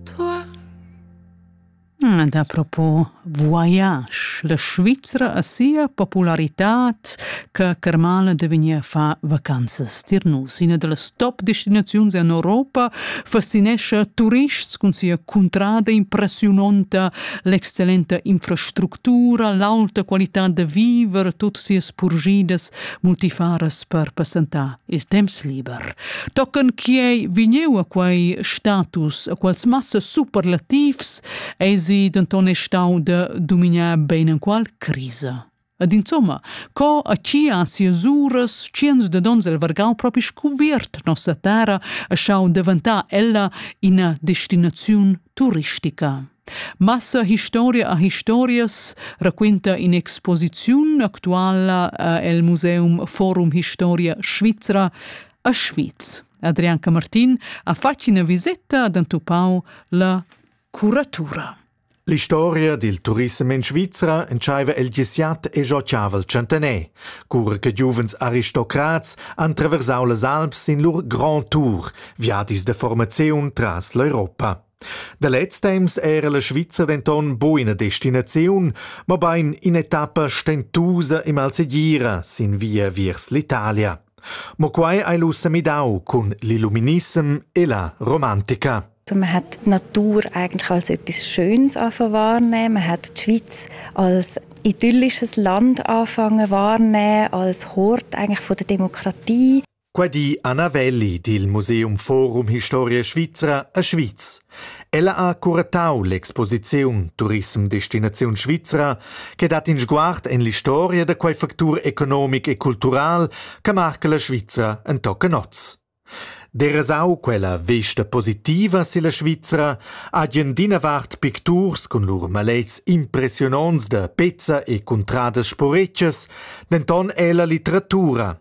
Tua? Da propo voyage. La Svizra ha sia popularitad che Kermale de vegnir fa vacanzas tir nus. Ina dals top destinaziuns en Europa fascinescha turists cun sia cuntrada impressiunonta, l'excellenta infrastructura, l'alta qualità da viver, tut sias purgidas multifaras per passentar. il temps liber. Tochen chiei vigneu a quei status, a quels massa superlativs, eisi denton e stau de dominar bein en qual crisa. Ed insomma, co a chi a sias uras, ciens de dons el vargau propi scuviert nossa terra, a schau daventar ella ina destinaziun turistica. Massa historia a historias raquinta in'exposiziun actuala el museum Forum Historia Svizra a Schwyz. Adrian Camartin ha fatg ina viseta ad entupau la curatura. L'historia dil turissem in Svizra entscheiva el gesiat e giocavel centener, cura che giuvens aristocrats han traversau las Alps in lur grand tour, viadis de formaziun tras l'Europa. Da lez temps era la Svizra denton bu ina destinaziun, mobein in'etappa stentusa e malsegira sin via viers l'Italia. Mo quei ei lu semidau cun l'illuminissem e la romantica. Man hat Natur eigentlich als etwas Schönes anfangen wahrnehmen. Man hat die Schweiz als idyllisches Land anfangen wahrnehmen, als Hort eigentlich von der Demokratie. Qua di Anna Welli dil Museum Forum Historia Svizra a Schwyz. Ella ha curatau l'exposiziun Turism Destinaziun Svizra che dat in sguard en l'historia da quei factur economic e cultural che marca la Svizra en tochen oz. Derasau quella vesta positiva silla Svizra hagen d'ina vart picturs cun lur malets impressiononts da pezza e cuntradas sporetschas, denton ella litteratura,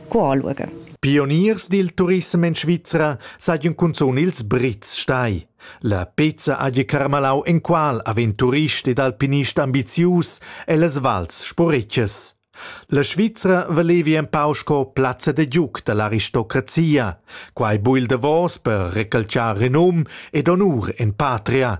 Gualuge. Pioniers dil turissem en Svizra sajan cunzun ils Brits stai. La pezza hagi carmalau enqual avent turist ed alpinist ambizius ellas vals sporetschas. La Svizra valevi empau sco plazza de giuc dall'aristocrazia. Quai bui il davos per recalciar renum ed honur en patria,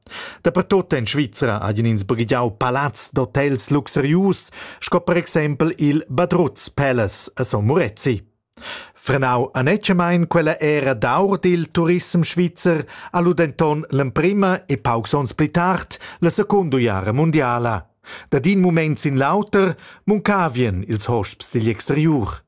Dapertut en Svizra hajan ins baghegiau palazs d'hotels luxurius, sco per exempel il Badruz Palace a Son Murezi. Frenau anetgamein quella era d'aur dil turism svizzer ha lu denton l'emprema e paucs onns pli tard la secunda jara mundiala. Da din mument sin l'auter muncavien ils hosps digl exteriur.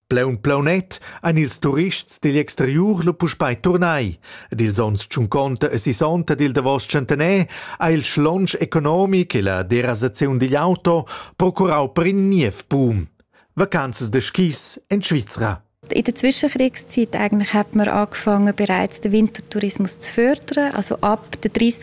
Plaun plaunet ein ils turists digl exteriur lu puspei turnai ed ils onns tschunconta e sisonta dil davos tschentaner ha il schlonsch economic e la derasaziun digl auto procurau per in niev boom. Vacanzas de skis en Svizra. In der Zwischenkriegszeit eigentlich hat man angefangen, bereits den Wintertourismus zu fördern. Also ab den 30.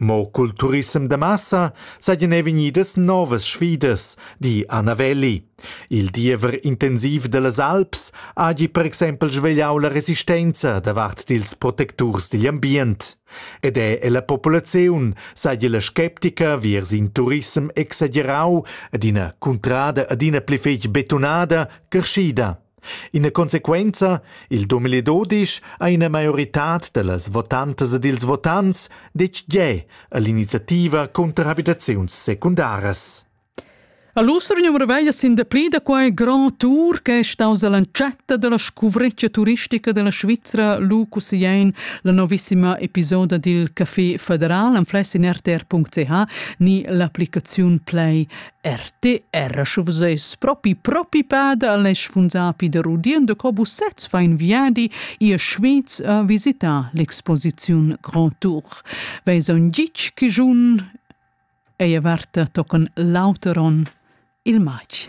Mo cul turissem da massa seigien ei vegnidas novas sfidas, di Anna Welli. Il diever intensiv dallas Alps hagi per exempel svegliau la resistenza davart dils protecturs digl ambient. Ed è ella populaziun seigi la sceptica viers in turissem exagerau ed ina cuntrada adina pli fetg betunada creschida. Ina consequenza, il Dumeli Dodisch ha ina maioritad da las votantas ed ils votants detg gie a l'iniziativa cunter abitaziuns secundaras. A l'Ustergnumero veglia sin dapli da quai grand tour che è staus all'entschatta della scuvreccia turistica della Svizzera lu cussegliein la novissima episoda dil Café Federal an fless in rtr.ch ni l'applicaziun Play RTR sche vus eis propi propi pada al esch vun sapi der udien de cobus sez fa in viadi ihr Schweiz a visitar l'exposiziun Grand Tour veis on gitg che giun ei averta tocan l'auteron il matg